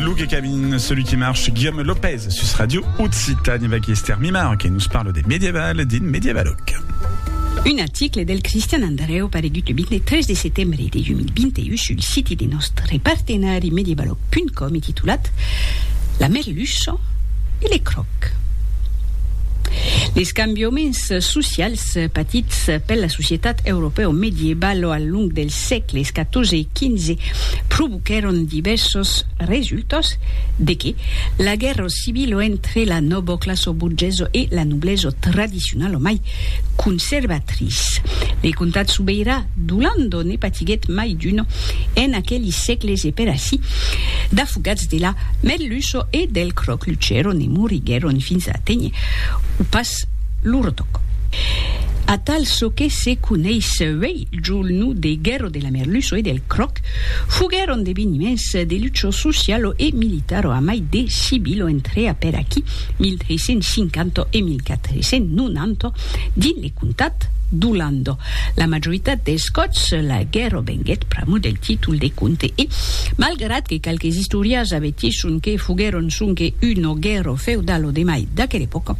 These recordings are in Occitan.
Luke Cabin, celui qui marche, Guillaume Lopez, sus Radio Occitane, avec Esther Mimar, qui nous parle des médiévales, din médiévaloc. Un article del Cristian Andreu paregut le 23 de setembre de 2021 sul siti de nòstre partenari medievaloc.com e titulat La merluça e le cròc. Les cambiaments socials patits per la societat europèo-medievalo al long dels sègles 14 e 2015 provoquèron divèrsos resultats de que la guèrra civila entre la nòva classa borgesa e la noblesa tradicionala mai conservatrice de comtat sobeirà d'Olanda ne patiguèt mai d'una en aqueli sègles e per ací d'afogats de la merluça e del cròc luchèron e moriguèron fins a aténher o pas lor tòc. Atal çò que se coneis uèi. Julnu de Guerro de la Merluço e del Croc foguèron d'eveniments de lucho socialo e militaro amai de Sibilo entrea per aquí 1350 e 1490 dins le comtat d'Olando. La majoritat dels còps la guerro venguèt pr'amor del títol de comte e, malgrat que qualques istorias avetgisson que foguèron sonque uno guerro feudalo de mai d'aquela epòca,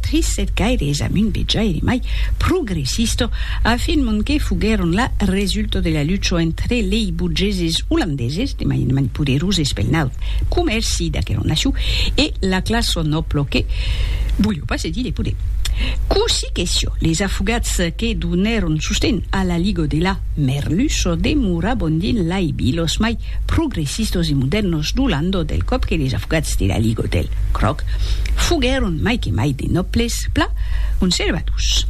trissèt gaire es amb un vejaire mai progressista, a fin mon que foguèron la resulta de la lucha entre lei burgeses olandeses, de manament poderoses pel naut comèrci d'aquera nacion, e la classa nòbla que voliá pas cedir de poder. Cossí que siá, les afogats que donèron sosten a la Liga de la Merluça demoravan dins lei vilas mai progressistos e modèrnos do Landau del còp que les avocats de la Ligue del Cròc foguèron mai que mai de nòbles pla conservadors.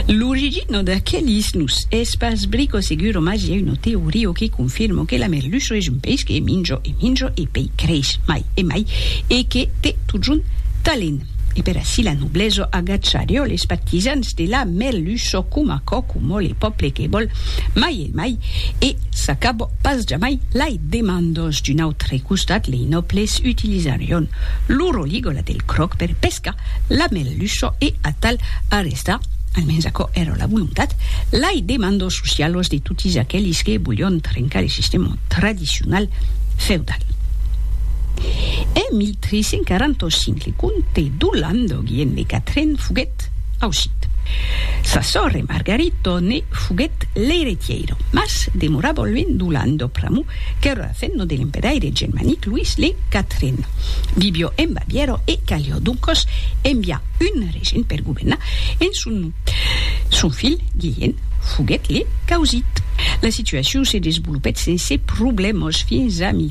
L'origina d'aquelis nus es pas brico seguro mas i a una teoria que confirma que la merluça es un peish que minja e minja e pei creix mai e mai e que te totjorn talent e per ací la noblesa agacharió les partisans de la merluça coma aquò coma le pòble que vòl mai e Emai, e s'acabò pas jamai lai demandos. D'un autre costat, lei nòbles utilisarion lo roligola del cròc per pescar la merluço e atal arrestar, almens aquò èra la volontat, lai demandos socialos de totis aquelis que volion trencar le sistèma tradicional feudal. En 1345, le comte d'Olanda Guillem de Catren foguèt ausit. Sa sòrre Margarito ne Foguèt l'eiretièira, mas demorà bolvent d'Olan do pr'amor qu'èra la femna de l'emperaire germanic Luís le Quatren. Vivió en Bavièra e calió doncas enviar un regent per governar en son nom. Son filh, Guilhèn, foguèt le causit. La situacion se desvolopèt sense problèmas fins a 1492.